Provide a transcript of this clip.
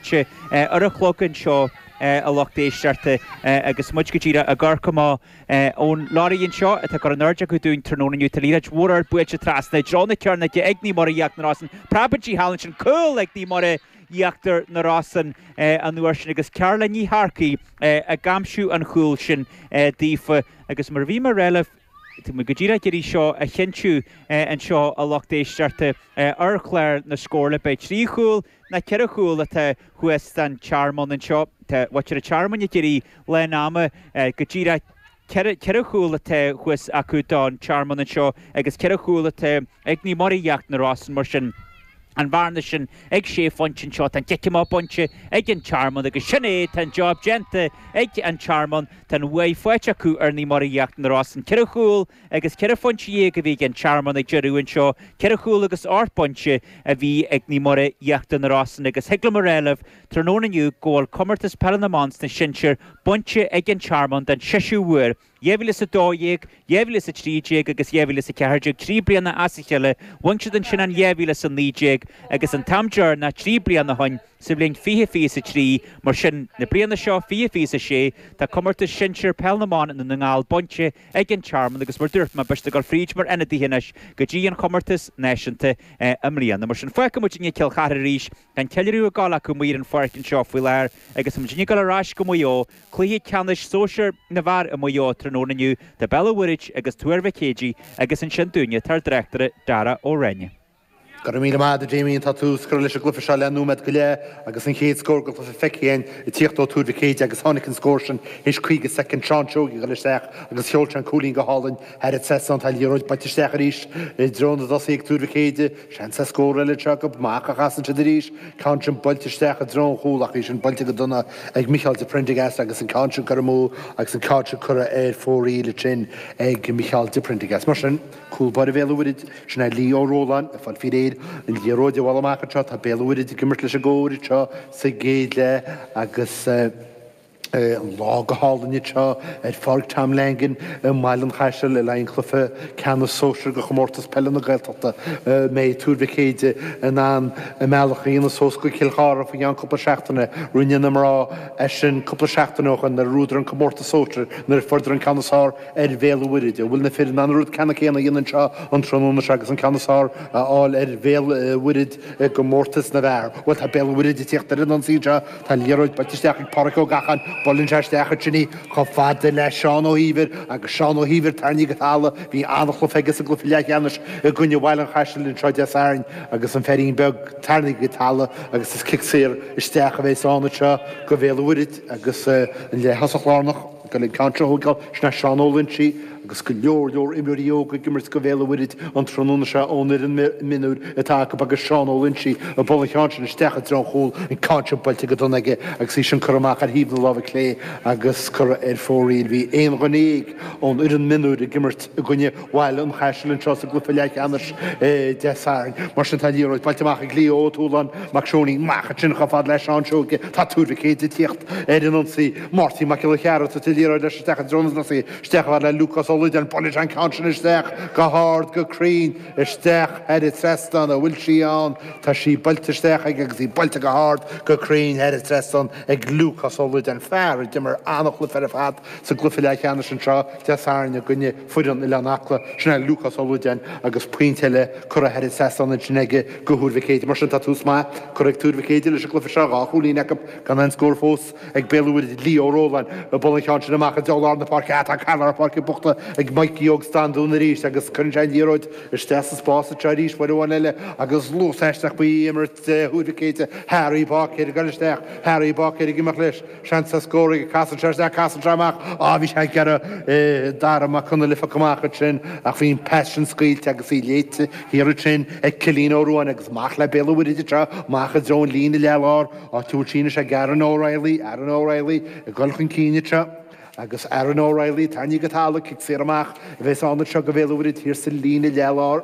sé ar a chlog anseo, a lucht éisteachta, agus muid go díreach ag amharc amach ón lorry anseo atá curtha in airde acu dúinn tráthnóna inniu. Tá liathróid mhór ard buailte trasna i dtreo na cearnóige ag Naomh Muire Íochtar na Rosann preabadh í thall ansin cúl ag Naomh Muire Íochtar na Rosann an uair sin agus Caroline Ní Shearcaigh ag aimsiú an chúl sin daofa agus mar a bhí mé a rá libh Tá muid go díreach ag iarraidh seo a chinntiú anseo a lucht éisteachta ar chlár na scór, ab é trí chúl ná ceithre chúl atá thuas don Tearmann anseo. Tá muintir an Tearmainn ag iarraidh lán ama go díreach. Ceithre chúl atá thuas acu don Tearmann anseo agus ceithre chúl atá. ag Naomh Muire Íochtar na Rosann, mar sin, an bhearna sin ag sé phointe anseo, tá an cic amach bainte ag an Tearmann, agus sin é, tá an job déanta ag an Tearmann, tá an bhuaidh faighte acu ar Naomh Muire Íochtar na Rosann. Ceithre chúl agus ceithre phointe déag a bhí ag an Tearmann ag deireadh anseo, ceithre chúl agus ocht bpointe a bhí ag Naomh Muire Íochtar na Rosann, agus thig liom a rá libh tráthnóna inniu go bhfuil Comórtas Peile na mBan sna Sinsir bainte ag an Tearmann don seisiú uair. 2012, 2013 agus 2014, trí bliana as a chéile, bhain siad ansin in 2019 agus an t-am deireanach trí bliana ó shin sa bhliain fiche fiche is a trí, mar sin, na bliana seo fiche fiche is a sé, tá comórtas sinsear Peil na mBan i nDún na nGall bainte ag An Tearmann agus mar dúirt mé, beidh siad ag dul fríd mar ionadaithe anois go dtí an comórtas náisiúnta i mbliana. Mar sin, fágfaidh muid i ndiaidh Cill Chartha arís. An ceiliúradh ag gabháil acu amuigh ar an pháirc anseo faoi láthair agus muidinne ag gabháil ar ais go Maigh Eo, cluiche ceannais sóisear na bhfear i Maigh Eo tráthnóna inniu idir Béal an Mhuirthead agus Tuar Mhic Éadaigh agus ansin dúinne tá ár dtráchtaire Dara Ó Rinn. Go raibh míle maith agat Damien, tá tús curtha leis an gcluiche seo le nóiméad go leith agus an chéad scór den chluiche feicthe againn ag tíocht ó Tuar Mhic Éadaigh agus tháinig an scór sin théis 50 soicind, Seán Seoighe ag goil isteach agus sheol sé an cúilín go hálainn thar an trasnán. Tá an liathróid buailte isteach arís i dtreo na dtosaithe ag Tuar Mhic Éadaigh. Seans ar scór eile anseo acu, amach a chasann siad arís, ceann sin buailte isteach i dtreo an chúil ach í sin buailte go dona ag Micheál de Priondargás agus an ceann sin curtha amú agus an ceann sin curtha ar fóraoil ansin ag Micheál de Priondargás. Mar sin, cúl báire Bhéal an Mhuirthead, sin é Lee Ó Róláin, ag fáil faoi réir. An liathróid ag dul amach anseo, tá Béal an Mhuirthead ag imirt leis an gcóir anseo sa gcéad leath agus, an lá go hálainn anseo ar Pháirc Tom Langan i mBaile an Chaisil le haghaidh an chluiche ceannais sóisir de Chomórtas Peile na Gaeltachta. An mbeidh Tuar Mhic Éadaigh in ann a mbealach a dhéanamh suas go Cill Chartha faoi cheann cúpla seachtaine. Rinne na mná é sin cúpla seachtain ó shin nuair a bhuadar an Comórtas Sóisir nuair a fuaireadar an ceann is fearr ar Bhéal an Mhuirthead. An bhfuil na fir in ann an rud ceannann céanna a dhéanamh anseo an tráthnóna seo agus an ceann is fearr a fháil ar Bhéal an Mhuirthead i gComórtas na bhfear? Bhuel tá Béal an Mhuirthead ag tíocht ar an ionsaí anseo Tá liathróid buailte isteach ag Pádraic Ó Gacháin, buaileann sé isteach ansin chomh fada le Seán Ó hÍomhair agus Seán Ó hÍomhair tarraingthe go talamh, bhí an-chluiche aige sa gcluiche leathcheannais i gcoinne Bhaile an Chaisil anseo Dé Sathairn agus an firín beag tarraingthe go talamh agus is cic saor isteach a bheidh ann anseo do Bhéal an Mhuirthead agus an leath thosach lárnach ag dul an ceann sin a thógáil sin é Seán Ó Loingsigh, agus go leor leor imreoirí óga ag imirt do Bhéal an Mhuirthead an tráthnóna seo ón fhoireann mionúir atá acu agus Seán Ó Loingsigh ag bualadh an cheann sin isteach i dtreo an chúil, an ceann sin buailte go dona aige agus í sin curtha amach ar thaobh na láimhe clé agus curtha ar fóraoil. Bhí aon duine dhéag ón fhoireann mionúir ag imirt i gcoinne Bhaile an Chaisil anseo sa gcluiche leathcheannais Dé Sathairn. Mar sin, tá liathróid buailte amach ag Leo Ó Tualáin, mac Seánaí, amach ansin chomh fada le Seán Seoige. Tá Tuar Mhic Éadaigh ag tíocht ar an ionsaí. Máirtín Mac Giolla Chearra ag tabhairt an liathróid leis isteach i dtreo na dtosaithe. Isteach chomh fada le Lúcás Ó Loideáin. Buaileann sé an ceann sin isteach go hard, go cruinn isteach thar an trasnán. An bhfuil sí ann? Tá sí buailte isteach aige agus í buailte go hard, go cruinn thar an trasnán ag Lúcás Ó Loideáin, fear a d'imir an-chluiche ar fad sa gcluiche leathcheannais anseo Dé Sathairn i gcoinne Foireann Oileán Acla, sin é Lúcás Ó Loideáin agus pointe eile curtha thairis ansin aige do Thuar Mhic Éadaigh. Mar sin, tá tús maith curtha ag Tuar Mhic Éadaigh leis an gcluiche seo, dhá chúilín acu, gan aon scór fós ag Béal an Mhuirthead. Lee Ó Róláin ag bualadh an cheann sin amach i dtreo lár na páirce ach tá cath lár na páirce buachta ag Maidhcí Óg Standún arís agus cuireann sé an liathróid isteach sa spás anseo arís, uair amháin eile agus luas aisteach faoi imirt Thuar Mhic Éadaigh, Harry Báicéir ag dul isteach, Harry Báicéir ag imeacht leis. Seans ar scór aige, casann sé, agus casann sé amach, á, bhí sé ag iarraidh Dara Mac Conghaile a phiocadh amach ansin, ach bhí an pas sin scaoilte agus í léite thiar ansin, ag Cillín Ó Ruain, agus amach le Béal an Mhuirthead anseo amach i dtreo an líne leath láir, áit a bhfuil sí anois ag Aaron O'Reilly, Aaron O'Reilly, ag dul chun cinn anseo, agus Aaron O'Reilly, tarraingthe go talamh, cic saor amach, a bheas ann anseo do Bhéal an Mhuirthead thiar sa líne leath láir.